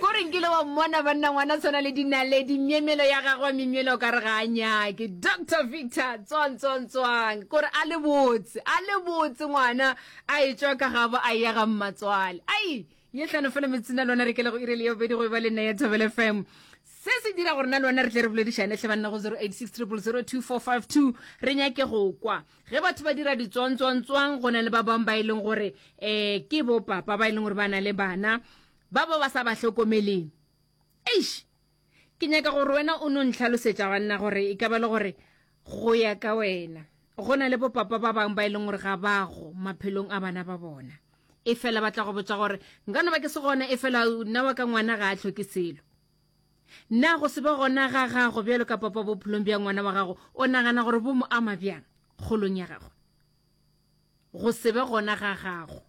Kore nkile wa mmona banna ngwana tshwana le dinaledi myemyelo ya gagwe wa memyelo ka re ga a nyake Doctor Victor tswang tswang tswang kore a le botse a le botse ngwana a e tswa ka gabo a ya ga mmatswale ai ye tlhano fela metsing a lona re kele go irele yo bedi go ba le nna ya Thobele FM se se dira gore na lona re tle re boledišane tle banna go 0860002452 re nyake go kwa ge batho ba dira ditswantswantswang go na le ba bangwe ba e leng gore um ke bo papa ba e leng gore ba na le bana ba bo ba sa ba hlokomeleng eish ke nyaka gore wena o no ntlhalosetša banna gore e ka ba le gore go ya ka wena go na le bo papa ba bangwe ba e leng gore ga ba go maphelong a bana ba bona e fela ba tla go botsa gore nka no ba ke se gona e fela nna wa ka ngwana ga a tlhoke selo Na go se be gona ga gagwe bjalo ka papa bophelong bja ngwana wa gago o nagana gore bo mo ama bjang kgolong ya gagwe? Go se be gona ga gago.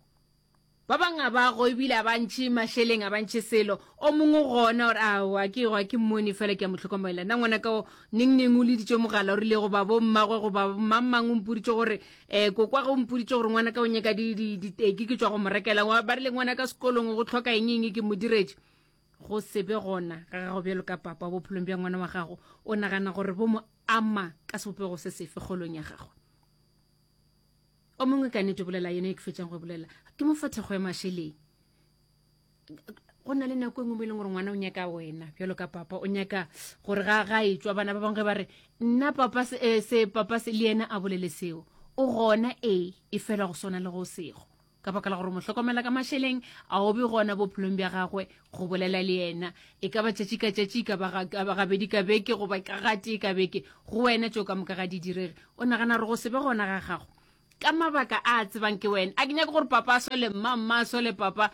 Ba bang a ba go ebile a ba ntšhe mašeleng, a ba ntšhe selo. O mongwe gona gore a wa ke wa ke mmone fela ke a mo tlhokomela. Na ngwana ka o neng neng o leditše mogala o rile go ba bo mmagwe go ba mang mang o mpoditše gore eh kokwa go mpoditše gore ngwana ka o nyaka di di diteki ke tswa go mo rekela ba rile ngwana ka sekolong go tlhoka eng eng ke mo diretše. go se be gona ga gago bjalo ka papa bophelong bja ngwana wa gago o nagana gore bo mo ama ka sebopego se sefe kgolong ya gagwe o mongwe ka nete bolela yone e ke fetsang go e bolela ke mo fa thekgo ya mašeleng go na le nako e nngwe mo e leng gore ngwana o nyaka wena bjalo ka papa o nyaka gore ga ga e tswa bana ba bangwe ge ba re nna papa se eh, papa se le yena a bolele seo o gona e e fela go swana le go sego ka baka la gore mo hlokomela ka mašeleng a obe gona bophelong bja gagwe go bolela le yena e ka ba tšatši ka tšatši e ka ba gabedi ka beke goba ka gatee ka beke go wena tšeo ka moka ga di direge o nagana gore go se be gona ga gago ka mabaka a a tsebang ke wena a ke nyake gore papa a sole mma mma a sole papa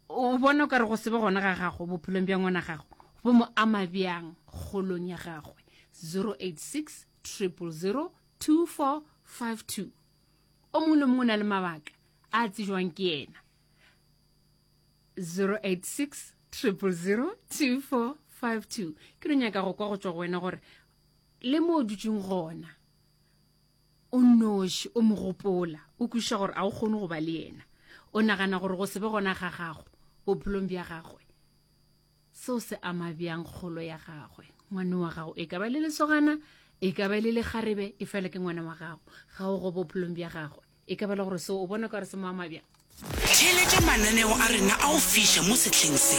o bona o ka re go se be gona ga gago bophelong bja ngwana gago bo mo ama bjang kgolong ya gagwe 086 triple 0 2452 o mongwe le mongwe o na le mabaka a tsejwang ke yena 086 0002452 ke re nyaka go kwa go tswa go wena gore le mo o dutseng gona o noši o mo gopola o kwešiša gore a o kgone go ba le yena o nagana gore go se be gona ga gago bophelong bja gagwe seo se ama bjang kgolo ya gagwe ngwane wa gago e ka ba le lesogana e ka ba le legarebe e fela ke ngwana wa gago ga o go bophelong bja gagwe e ka ba le gore seo o bona ka gore se mo ama bjang theeletša mananeo a rena a go fiša mo sehleng se